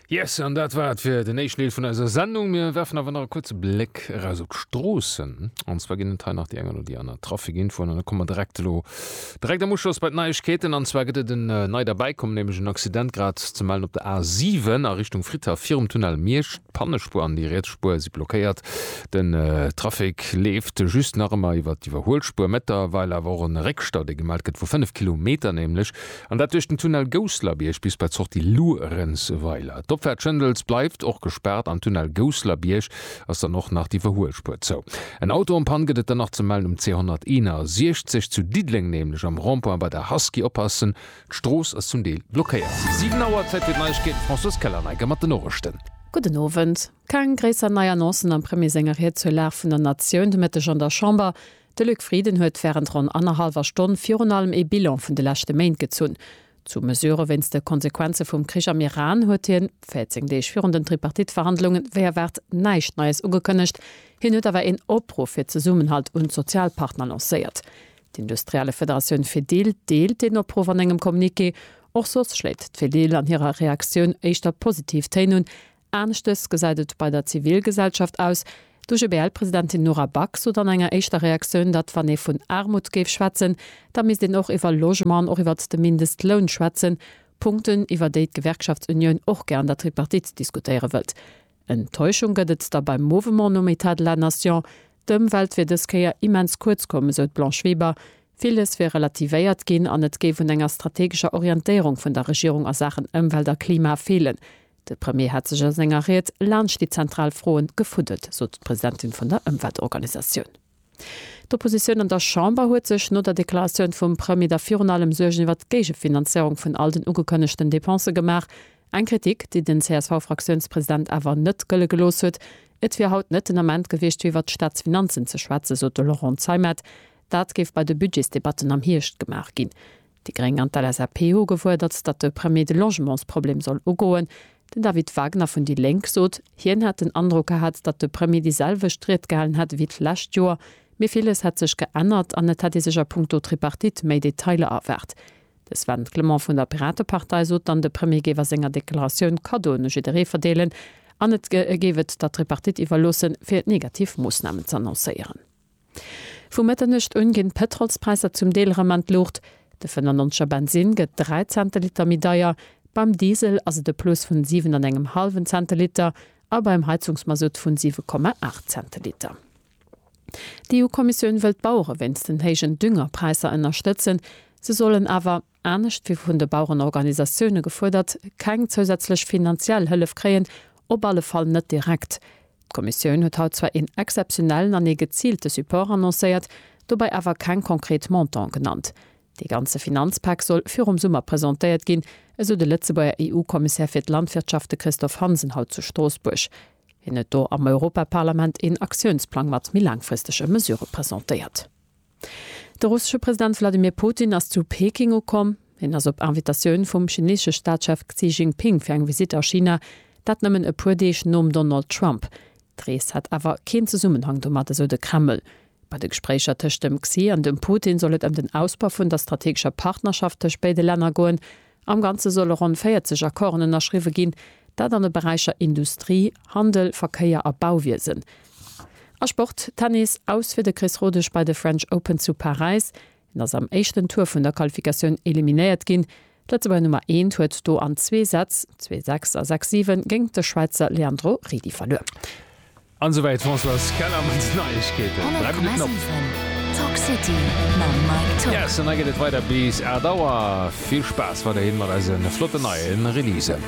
Yes, an dat war et fir den éischten Deel vun eiser Sendung. Mir werfen awer nach e kuerze Bléck eraus op d'Stroossen. An zwar ginn et hei nach déi eng oder déi aner Trafikinfoen an da komme mer direkt elo direkt am Uschloss bei d'Neiegkeeten. An zwar gëtt et en äh, nei derbäikommen, nämlech en Accident grad ze mellen op der A7 a Richtung Fritha virum Tunnel Miersch. D'Pannespuer an déi riets Spuer si blockéiert. Den äh, Trafic leeft just nach ëmmer iwwer d'Iwwerhuelspuer. Mettlerweil awer och en Réckstau, dee gemellt gëtt vu 5 Kilometer nämlech. An dat duerch den Tunnel Gousselerbiërg bis bei d'Sortie Luerenzweiler. D'Opfahrt Schëndels bleift och gespaart, am Tunnel Gousselerbiërg ass dann och nach d'Iwwerhuelspuer zou. En Auto en panne gëtt et dann nach ze mellen um C161 zu Diddeleng, nämlech am Rond-point bei der Husky. Oppassen, d'Strooss ass zum Deel blockéiert. 7 Auer, Zäit fir d'Neiegkeeten, Françoise Keller-Neiker mat den Norechten. Gudden Owend. Keng gréisser nei Annoncen am Premier senger Ried zur Lag vun der Natioun de Mëtteg an der Chamber. De Luc Frieden huet wärend ronn annerhallwer Stonn virun allem ee Bilan vun de leschte Méint gezunn. Zu Mesurë wéinst de Konsequenze vum Krich am Iran huet hien, 14 Deeg virun den Tripartite-Verhandlungen, wéi erwaart näischt Neies ugekënnegt. Hien huet awer een Opruff fir Zesummenhalt un d'Sozialpartner lancéiert. D'industrielle Federatioun Fedil deelt deen Opruff an engem Communiqué. Och soss schléit d'Fedil an hirer Reaktioun éischter positiv Téin un. Aneschtes gesäit et bei der Zivilgesellschaft aus. D'UGBL-Presidentin Nora Back sot an enger éischter Reaktioun, datt wann ee vun Aarmut géif schwätzen, da misst een och iwwer Logement an och iwwert de Mindestloun schwätzen, Punkten, iwwer déi d'Gewerkschaftsunioun och gär an der Tripartite diskutéiere wëllt. Enttäuschung gëtt et da beim Movement nom Etat de la Nation. D'Ëmwelt wier dës Kéier immens kuerz komm, esou d'Blanche Weber. Villes wier relativéiert ginn an et géif un enger strategescher Orientéierung vun der Regierung a Saachen Ëmwelt a Klima feelen. De Premier hat sech a senger Ried laanscht déi zentral Froen gefuddelt, sot d'Presidentin vun der Ëmweltorganisatioun. D'Oppositioun an der Chamber huet sech no der Deklaratioun vum Premier da virun allem Suergen iwwert d'Géigefinanzéierung vun all den ugekënnegten Depensë gemaach. Eng Kritik, déi den CSV-Fraktiounspresident awer net gëlle gelooss huet. Et wier haut net den Ament gewiescht, fir iwwert d'Staatsfinanzen ze schwätzen, sot de Laurent Zeimet. Dat géif bei de Budgetsdebatten am Hierscht gemaach ginn. Déi Gréng an d'LSAP hu gefuerdert, datt de Premier de Logementsproblem soll ugoen. Den David Wagner vun déi Lénk sot, hien hätt den Androck gehat, datt de Premier déi selwecht Ried gehalen hätt ewéi d'lescht Joer, mee villes hätt sech geännert an et hätt ee sech a Punkto Tripartite méi Detailer erwaart. De Sven Clement vun der Piratepartei sot dann, de Premier géif a senger Deklaratioun Cadeauen u jidderee verdeelen an et géif et der Tripartite iwwerloossen, fir negativ Moossnamen z'annoncéieren. Vu Mëtternuecht un ginn d'Pëtrolspräisser zum Deel erëm an d'Luucht. De 95 er Bensinn gëtt 3 Cent de Liter méi deier, beim Diesel ass et e Plus vun 7 an engem hallwen Cent de Liter a beim Heizungsmasutt vun 7,8 Cent de Liter. D'EU-Kommissioun wëll d'Bauere wéinst den héijen Düngerpräisser ënnerstëtzen. Se sollen awer. anescht wéi vun de Bauerenorganisatioune gefuerdert, keng zousätzlech finanziell Hëllef kréien, op alle Fall net direkt. D'Kommissioun huet haut zwar een exzeptionellen an ee geziilte Support annoncéiert, dobäi awer keng konkret Montanten genannt. Dee ganze Finanzpak soll virum Summer presentéiert ginn, esou de Lëtzebuerger EU-Kommissär fir d'Landwirtschaft, de Christophe Hansen haut zu Stroossbuerg. Hien huet do am Europaparlament een Aktiounsplang mat méi laangfristege Mesurë presentéiert. De russesche President Wladimir Putin ass zu Peking ukomm. Hien ass op Invitatioun vum chineesesche Staatschef Xi Jinping fir eng Visitt a China, dat nëmmen e puer Deeg nom Donald Trump. D'Rees hätt awer keen Zesummenhang domat, esou de Kreml. Bei de Gespréicher tëscht dem Xi an dem Putin soll et ëm den Ausbau vun der strategescher Partnerschaft tëscht béide Länner goen. Am Ganze solle ronn 40 Accorden ënnerschriwwe ginn, dat an de Beräicher Industrie, Handel, Verkéier a Bauwiesen. A Sport, Tennis, Aus fir de Chris Rodesch bei de French Open zu Paräis. En ass am éischten Tour vun der Qualifikatioun eliminéiert ginn. D'Lëtzebuerger Nummer eent huet do an zwee Sätz, zwee, sechs a sechs, sieben, géint de Schwäizer Leandro Redi verluer. An esou wäit Françoise Keller mat den Neiegkeeten. 100,7 Talk City mam Mike Tock. Yes, an da geet et weider bis 8 Auer. Vill Spaass weiderhin mat eise flotten neie Releasen.